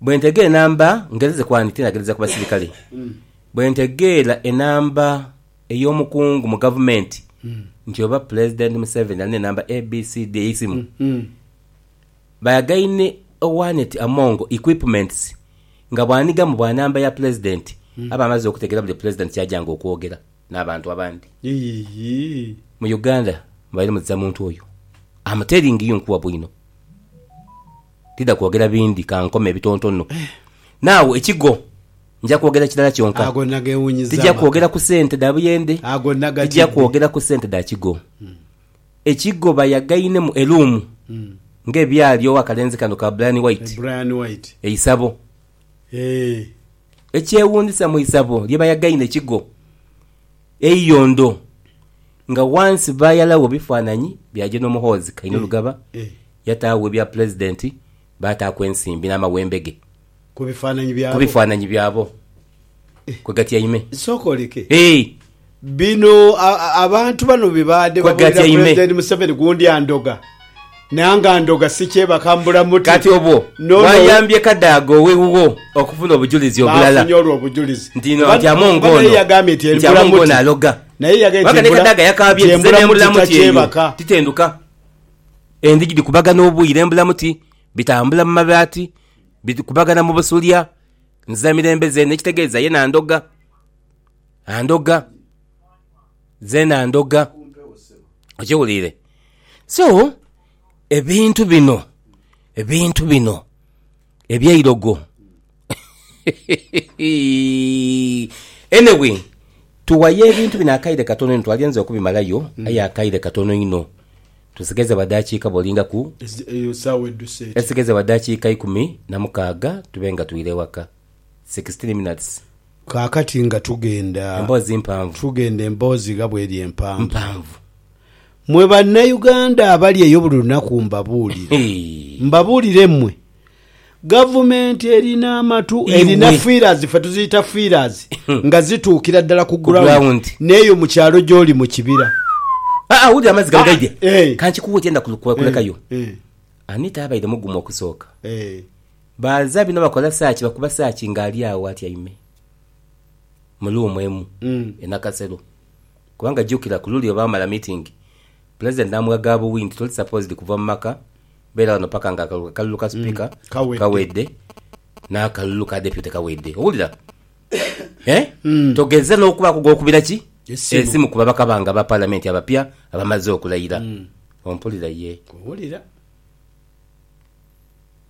Bwe ntegeera enamba, ngezeeze kwandika enagereza ku basirikale, bwe ntegeera enamba ey'omukungu mu gavumenti nti oba Pulezidenti Museveni alina enamba ABCD ey'eisimu, bayagaine owanet among equipments nga bw'anhigamu bwa namba ya Pulezidenti aba amaze okutegeera buli Pulezidenti ky'ajanga okwogera n'abantu abandi. Mu Uganda mubaire muzira muntu oyo. Am telling you nkuwa bwino. Tidha kwogera bindi, ka nkome ebitontono. Naagho ekigo, nja kwogera kirala kyonka. Tija kwogera ku sente dha buyende, tija kwogera ku sente dha kigo. Ekigo bayagainemu e luumu ng'ebyali owa kalenzi kano ka Bryan White, e Isabo. Ekyewuunzisa mu isabo lye bayagaine kigo. Eiyo ndo nga wansi baayalagho bifaananyi bya General Muhoozi Kainerugaba, yataagho ebya Pulezidenti, baataaku ensimbi n'amawembe ge Ku bifaananyi ku byabo. bifaananyi byabo kwe gatyaime. Sooka oleke. Eeh! Bino a- a- abantu bano bye baadhe Kwe babuulira gatyaime. Pulezidenti Museveni ku ndya ndhoga. Nangandhoga sikyebaka mbula muti. Kati obwo bwayambye Kadaga ow'iwuwo okufuna obujulizi obulala nti Amonga ono aloga. Kubanga ni Kadaga yakaabye nti nze n'embula muti eyo titenduka. Endhigi dhikubagana obwire embula muti, bitambula mu mabaati, bikubagana mu busulya, nziza mirembe zeene. Ekitegeeza ye nandhoga, andhoga. Zeena ndhoga. Okiwuliire? So, ebintu bino, ebintu bino eby'eirogo Anyway, tuwayo ebintu bino akaire katono inho, twali nze okubimalayo aye akaire katono inho. Tusigaiza badakiika bwolingaku, esigaiza badakiika ikumi na mukaaga tube nga twire ewaka. sixteen minutes. Kaakati nga tugenda. Emboozi mpanvu. Tugenda emboozi gha bw'eri empanvu. Mpanvu. Mwe Bannayuganda abali eyo buli lunaku mbabuulira. Hee. Mbabuulire mmwe, Gavumenti erina amatu, Iwe. erina fiirazi, ffe tuziyita fiirazi, nga zituukira ddala ku Ku ground, ground. n'eyo mu kyalo gy'oli mu kibira. Aa, wulira amazzi gano Ah, gaidhye. eh. Ka nkikuwe kyenda kulu- kwe- Eh, kulekayo. eh, Anita abaire mugumu okusooka. eh. Baanza bino bakola saaki bakuba saaki nga ali agho atyaime mu luumu emu e Nakasero kubanga jukira ku luli olwamala mitingi Pulezidenti n'amugha ga buwi nti toli sapoozidi kuva mu maka, beera ghano paka nga akalulu akalulu ka Sipiika kawedde n'akalulu ka Depyuti kawedde. Owulira? Hee? Togeza n'okubaaku gw'okubira ki? Esimu ku babaka bange aba Palamenti abapya abamaze okulayira. Ompulira? Yee. Nkuwulira.